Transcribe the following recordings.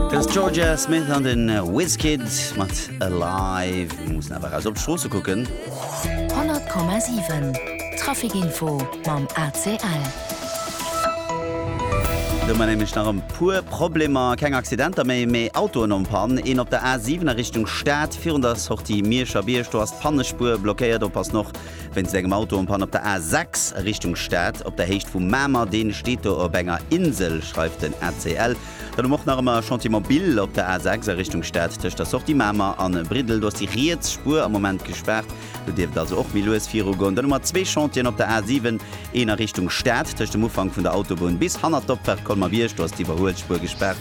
Dës Georgia Smith an den Wizkid mat Alive. Mir mussen awer eras op d'Stroosse kucken. 100,7 Trafikinfo mam ACL. Do man nämlech nach en puer Problemer, keng Accidenter méi, mee Autoen en panne. Een op der A7 a Richtung Stad, virun der Sortie Mierscher Bierg, do ass d'Pannespuer blockéiert. Oppassen och Wéinst engem Autounpann op der A 6 a Richtung Stad op der Héicht vu Mamer, dee steet do op enger Insel, schreift den ACL. Dann hu mer och nach ëmmer Chantier Mobil op der A 6 a Richtung Stad tëscht der Sortie Mamer a Briddel. Do ass déi riets Spuer am Moment gespaart, do dierft et also och méi lues virugoen. Dann hu mer zwee Chantieren op der A 7, een a Richtung Stad tëscht dem Ufank vun der Autobunn bis hanner d'Opfahrt Colmer-Bierg, do ass d'Iwwerhuelspuer gespaart,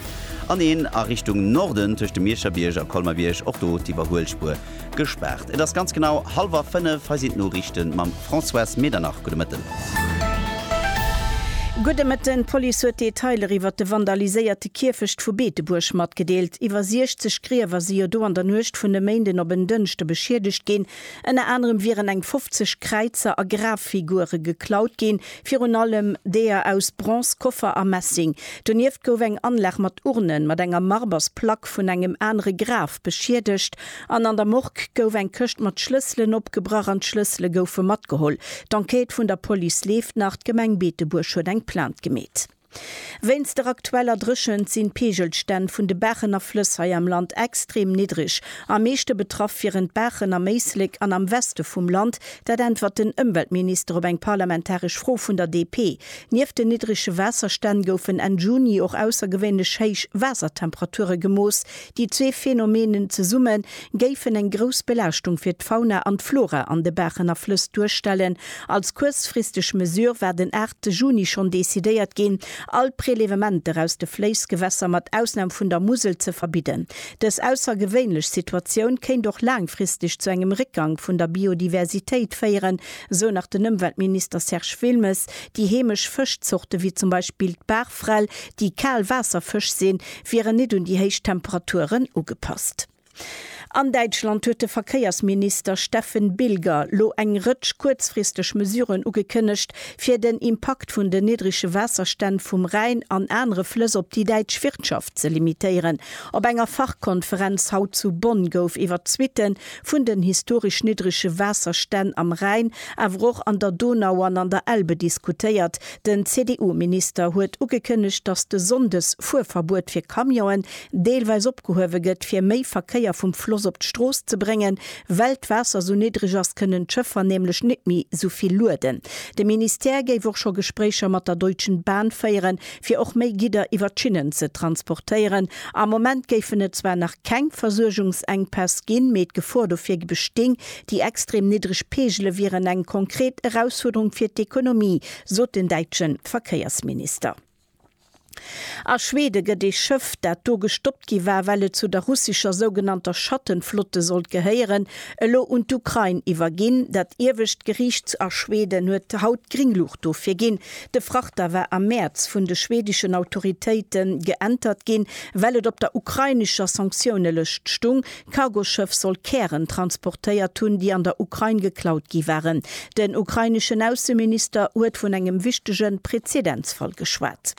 an een a Richtung Norden tëscht dem Miescherbierg a Colmer-Bierg, och do d'Iwwerhuelspuer Gespaart. Et ass ganz genau halwer 5, hei sinn d'Noriichten mam Françoise Medernach. Gudde Mëtten. Gudde Mëtten. D'Police huet Detailer iwwert de vandaliséierte Kierfecht vu Beetebuerg matgedeelt. Iwwer 60 Griewer si jo do an der Nuecht vun e Méinden op en Dënschde beschiedegt ginn. Ënner anerem wieren eng 50 Kräizer a Graffigure geklaut ginn. Virun allem deeër aus Bronze, Koffer a Messing. Donieft gouf eng Anlag mat Urnen mat enger Marbersplack vun engem anere Graf beschiedegt an an der Morgue gouf eng Këscht mat Schlësselen opgebrach an d'Schlëssele goufe matgeholl. D'Enquête vun der Police leeft nach. D'Gemeng Beetebuerg huet eng Plainte gemeet. Wéinst der aktueller Dréchent sinn d'Peegelstänn vun de Baachen a Flëss hei am Land extrem niddreg. Am meeschte betraff wieren d'Baachen am Éislek an am Weste vum Land. Dat äntwert den Ëmweltminister op eng parlamentaresch Fro vun der DP. Nieft den niddrege Waasserstänn goufen Enn Juni och aussergewéinlech héich Waasertemperature gemooss, Déi zwee Phänomenen zesumme géifen eng grouss Belaaschtung fir d'Fauna an d'Flora an de Baachen a Flëss duerstellen. Als kuerzfristeg Mesure war den 8 Juni schonn decidéiert ginn, all Prelevementer aus de Fléissgewässer, mat Ausnam vun der Musel, ze verbidden. Dës aussergewéinlech Situatioun kéint och laangfristeg zu engem Réckgang vun der Biodiversitéit féieren, esou nach den Ëmweltminister Serge Wilmes. Déi heemesch Fëschzorte wéi zum Beispill d'Baachfrell, déi Kaalwaasserfësch sinn, wieren nit un déi héich Temperaturen ugepasst. An Däitschland huet de Verkéiersminister Steffen Bilger lo eng Rëtsch kuerzfristeg Mesuren ugekënnegt, fir den Impakt vun den niddrege Waasserstänn vum Rhäin an anere Flëss op déi däitsch Wirtschaft ze limitéieren. Op enger Fachkonferenz haut zu Bonn gouf iwwer d'Suitte vun den historesch niddrege Waasserstänn am Rhäin, awer och an der Donau an an der Elbe diskutéiert. Den CDU-Minister huet ugekënnegt, datt de Sonndes Fuerverbuet fir Camionen deelweis opgehuewe gëtt, fir méi Verkéier vum Floss op d'Strooss ze bréngen. Well d'Waasser sou niddreg ass, kënnen d'Schëffer nämlech net méi sou vill lueden. De Ministère géif och scho Gespréicher mat der Deutschen Bahn féieren, fir och méi Gidder iwwer d'Schinnen ze transportéieren. Am Moment géifen et zwar nach keng Versuergungsenkpäss ginn, mee d'Gefor dofir besting. Déi extrem niddreg Peegele wieren eng konkret Erausfuerderung fir d'Ekonomie, sot den däitsche Verkéiersminister. A Schwede gëtt ee Schëff, dat do gestoppt gi war, well et zu der russescher sougenannter Schattenflotte sollt gehéieren, elo un d'Ukrain iwwerginn. Dat iewescht Geriicht a Schweden huet haut d'Gringluucht dofir ginn. De Frachter war am Mäerz vun de schwedeschen Autoritéite geäntert ginn, well et op der ukrainescher Sanktiounelëscht stung. D'Cargoschëff soll Kären transportéiert hunn, déi an der Ukrain geklaut gi waren. Den ukraineschen Ausseminister huet vun engem wichtege Prezedenzfall geschwat.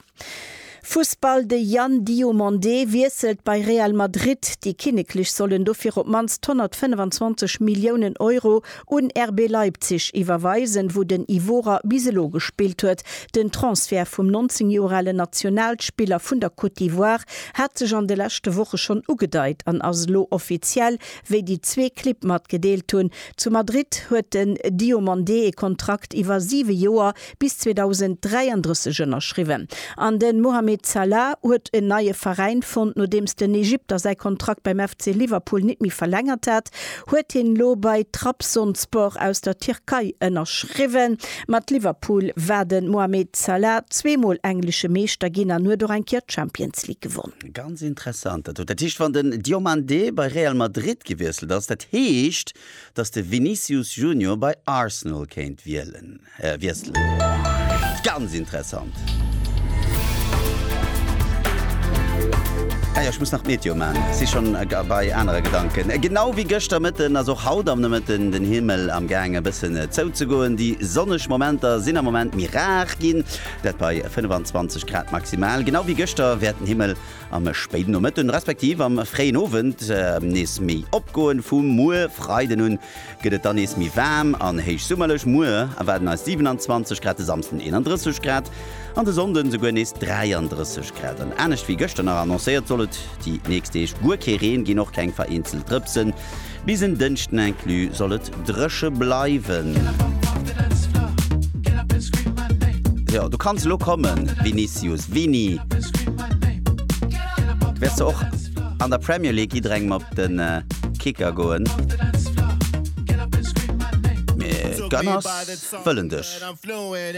Fussball, De Yann Diomandé wiesselt bei Real Madrid, déi Kinneklech sollen dofir op d'mannst 125 Milliounen Euro un RB Leipzig iwwerweisen, wou den Ivorer bis elo gespillt huet. Den Transfert vum 19 Joer alen Nationalspiller vun der Côte d'Ivoire hat sech an de leschte Woche schonn ugedeit an ass elo offiziell, wéi déi zwee Clibb matgedeelt hunn. Zu Madrid huet den Diomandé ee Kontrakt iwwer siwe Joer bis 2033 ënnerschriwwen an de Mohamed Salah huet en neie Veräin fonnt. Nodeems den Egypter säi Kontrakt beim FC Liverpool nit méi verlängert hat, huet hien elo bei Trabzonspor aus der Tierkei ënnerschriwwen. Mat Liverpool war de Mohamed Salah zwee Mol englesche Meeschter ginn an huet och eng Kéier d'Champions League gewonnen. Ganz interessant dat do. Dat heescht wann den Diomandé bei Real Madrid gewiesselt ass, dat heescht dass de Vinicius Junior bei Arsenal kéint wielen? Wiesselen. Ganz interessant! Ah jo, ech muss nach d'Meteo man, si schon bei anere Gedanken. Genau wéi gëschter Mëtten ass och haut am Nomëtten den Himmel am gaang e bëssen zouzegoen. Déi sonneg Momenter sinn am Moment méi rar ginn, dat bei 25 Grad maximal. Genau wéi gëschter wäert den Himmel am spéiden Nomëtten, respektiv am fréien Owend nees méi opgoen. Vu muer Freiden un gëtt et dann nees méi waarm an héichsummerlech, muer erwaarden eis 27 Grad, de Samsden 31 Grad an de Sonnde esouguer nees 33 Grad. An anescht wéi gëschter nach annoncéiert, soll et déi nächst Deeg guer kee Reen ginn, och keng vereenzelt Drëpsen. Bis en Dënschden inclus soll et dréche bleiwen. Jo, du kanns elo kommen, Vinicius, Vini, wärst de och. An der Premier League jidderengem op de Kicker goen. Mee d'Gunners wëllen dech.